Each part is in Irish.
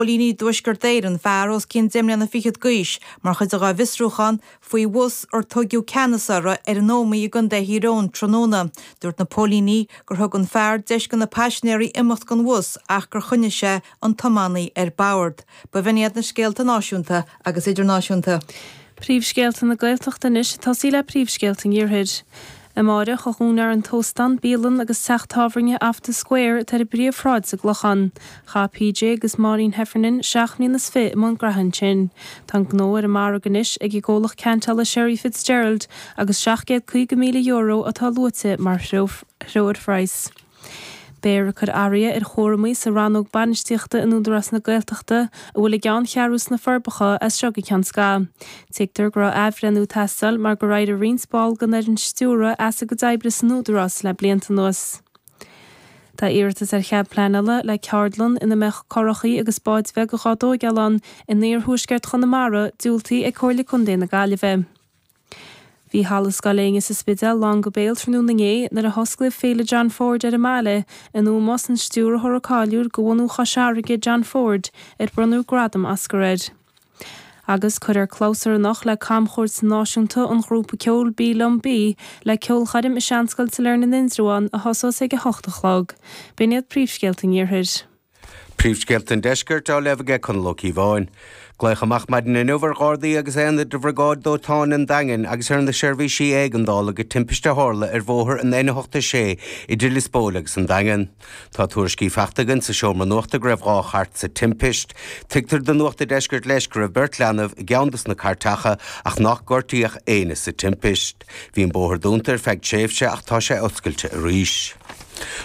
Póilíní Thuaisceart Éireann, fear os cionn deich mbliana fichead d'aois, mar chuid dá bhfiosrúchán faoi bhus ar tugadh ceannas air ar an Ómaigh i gContae Thír Eoghain tráthnóna. Dúirt na póilíní gur thug an fear deis do na paisinéirí imeacht den bhus ach gur choinnigh sé an tiománaí ar bord. B'in iad na scéalta náisiúnta agus idirnáisiúnta. Príomhscéalta na Gaeltachta anois, ag tosaí le príomhscéalta an Iarthair. Amáireach a dhúnfar an t-óstán, bialann agus teach tábhairne Off the Square atá ar an bpríomhshráid sa gClochán. Chaith PJ agus Máirín Heffernan seacht mbliana is fiche i mbun gnaithe ansin. Tá an gnó ar an margadh anois ag an gcomhlacht ceantála Sherry Fitzgerald agus €750,000 atá luaite mar threoirphraghas. Beidh roinnt athraithe ar chúraimí sa Rannóg Bainistíochta in Údarás na Gaeltachta a bhfuil a gceanncheathrú sna Forbacha as seo go ceann scaithimh. Tuigtear go raibh athbhreithniú ag teastáil mar gur éirigh roinnt ball den fhoireann stiúrtha as a gcuid oibre san Údarás le blianta anuas. Tá iarratas ar chead pleanála le ceardlann ina mbeadh currachaí agus báid bheaga dhá dtógáil ann in iarthuaisceart Chonamara diúltaithe ag Comhairle Contae na Gaillimhe. Bhí Halla Scoil Éinne sa Spidéal lán go béal tráthnóna inné nuair a hosclaíodh Féile John Ford ar an mbaile in ómós don stiúrthóra cáiliúil de bhunadh Chois Fharraige, John Ford, ar bronnadh gradam Oscar air. Agus cuirfear clabhsúr anocht le camchuairt náisiúnta an ghrúpa ceoil Bí Liom Bí le ceolchoirm i Seanscoil Sailearna in Indreabhán a thosós ag a hocht a chlog. B'in iad príomhscéalta an iarthair. Príomhscéalta an Deiscirt á léamh aige Conall Ó Cíobháin. Glaoch amach maidin inniu ar Ghardaí agus aonaid de Bhriogáid Dóiteáin an Daingin agus ar na seirbhísí éigeandála go timpist a tharla ar bhóthar an N86 idir Lios Póil agus an Daingean. Tá tuairiscí faighte againn sa seomra nuachta go raibh dhá chairt sa timpist. Tuigtear do Nuacht a' Deiscirt leis go raibh beirt leanbh i gceann dos na cairteacha ach nár gortaíodh éinne sa timpist. Bhí an bóthar dúnta ar feadh tréimhse ach tá sé oscailte arís.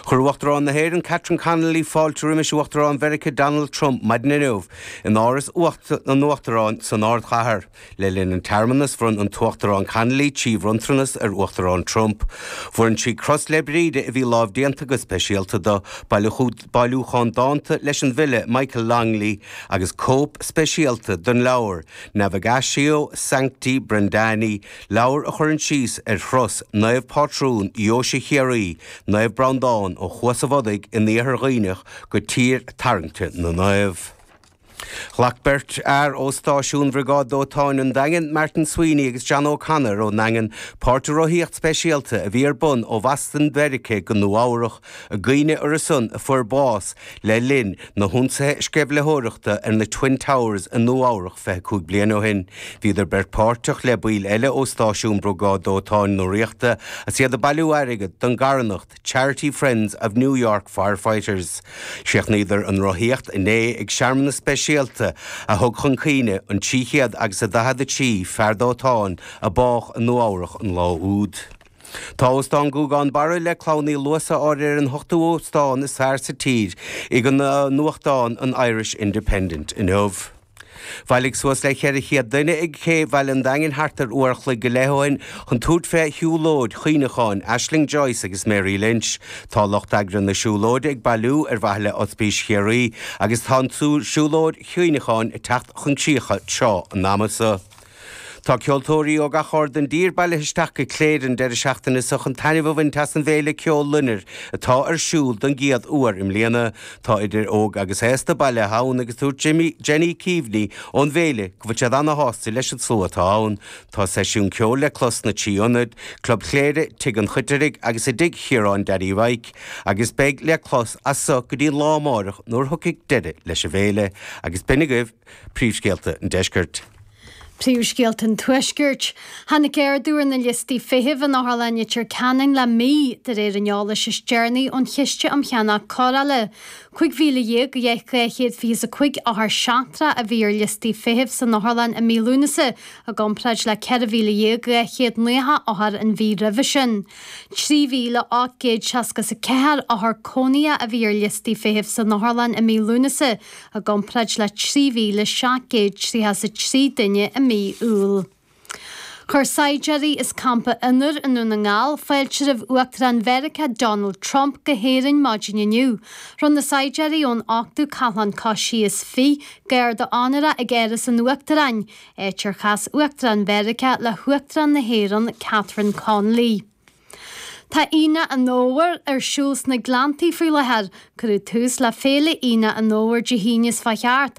Chuir Uachtarán na hÉireann Catherine Connolly fáilte roimis Uachtarán Mheiriceá Donald Trump maidin inniu in Áras an Uachtaráin san ardchathair. Le linn an tsearmanas bhronn an tUachtarán Connolly trí bhronntanas ar Uachtarán Trump. Bhronn sí Cros Bhríde a bhí lámhdéanta go speisialta dó, bailiúchán dánta leis an bhfile Michael Longley agus cóip speisialta den leabhar Navigatio Sancti Brendani, Leabhar a chuireann síos ar thuras Naomhphátrún Dheoise Chiarraí, Naomh Breandán, ó Chuas a' Bhodaigh in Iarthar Dhuibhneach go Tír Tairngire na Naomh. Ghlac beirt fhear ó Stáisiún Bhriogáid Dóiteáin an Daingin, Martin Sweeney agus John O'Connor ón Daingean, páirt i rothaíocht speisialta a bhí ar bun ó Bhoston Mheiriceá go Nua Eabhrach I gcuimhne orthu san a fuair bás le linn na hionsaithe sceimhlitheoireachta ar na Twin Towers i Nua Eabhrach 25 bliain ó shin. Bhíodar beirt páirteach le baill eile ó Stáisiún Briogáid Dóiteáin na Ríochta is iad ag bailiú airgead don gcarthanacht Charity Friends of New York Firefighters. Chríochnaíodar an rothaíocht inné ag searmanas speisialta a thug chun cuimhne an 300 agus a 43 fear dóiteáin a bádh i Nua Eabhrach an lá úd. Tá Óstán Gúgán Barra le Clann Uí Luasa áirithe ar an ochtú óstán is fearr sa tír ag an nuachtán an Irish Independent inniu. Bhailigh suas le 400 duine ag cé Bhaile an Daingin thart ar uair a chloig go leith ó shin chun tabhairt fé shiúlóid chuimhneacháin Aisling Joyce agus Mary Lynch. Tá lucht eagraithe na siúlóide ag bailiú ar mhaithe le Ospís Chiarraí agus tá an siúlóid chuimhneacháin ag teacht chun críche tráth an ama so. Tá ceoltóirí ó gach aird den dtír bailithe isteach go Cléire an deireadh seachtaine so chun taitneamh a bhaint as an bhféile ceoil loinnir atá ar siúl don gcéad uair i mbliana. Tá idir óg agus aosta bailithe ann agus dúirt Jimmy, Jenny Keaveney ón bhféile go bhfuil siad ana shásta leis an slua atá ann. Tá seisiún ceoil le clos sna trí ionad, Club Chléire, Tigh an Choitirigh agus i dTigh Chiaráin Danny Mhike, agus beidh le clos as so go dtí an lá amáireach nuair thiocfaidh deireadh leis an bhféile. Agus b'shin agaibh. Príomhscéalta an Deiscirt. Príomhscéalta an Tuaiscirt. Tháinig ardú ar na liostaí feithimh in Otharlann Leitir Ceanainn le mí, de réir an eolais is deireanaí ón Chiste um Cheannach Cóireála. 15,225 othar seachtrach a bhí ar liostaí feithimh san otharlann i mí Lúnasa i gcomparáid le 14,290 othar an mhí roimhe sin. 3,864 othar cónaithe a bhí ar liostaí feithimh san otharlann i mí Lúnasa i gcomparáid le 3,733 duine i mí Iúil. Chuir saighdiúirí as Campa Fhionnabhair i nDún na nGall fáilte roimh Uachtarán Mheiriceá Donald Trump go hÉirinn maidin inniu. Rinne na saighdiúirí ón 8ú Cathlán Coisithe is Fiche garda onóra ag Áras an Uachtaráin, áit ar chas Uachtarán Mheiriceá le hUachtarán na hÉireann Catherine Connolly. Tá Aonach an Fhómhair ar siúl sna Gleanntaí faoi láthair. Cuireadh tús le Féile Aonach an Fhómhair Dé hAoine seo chuaigh thart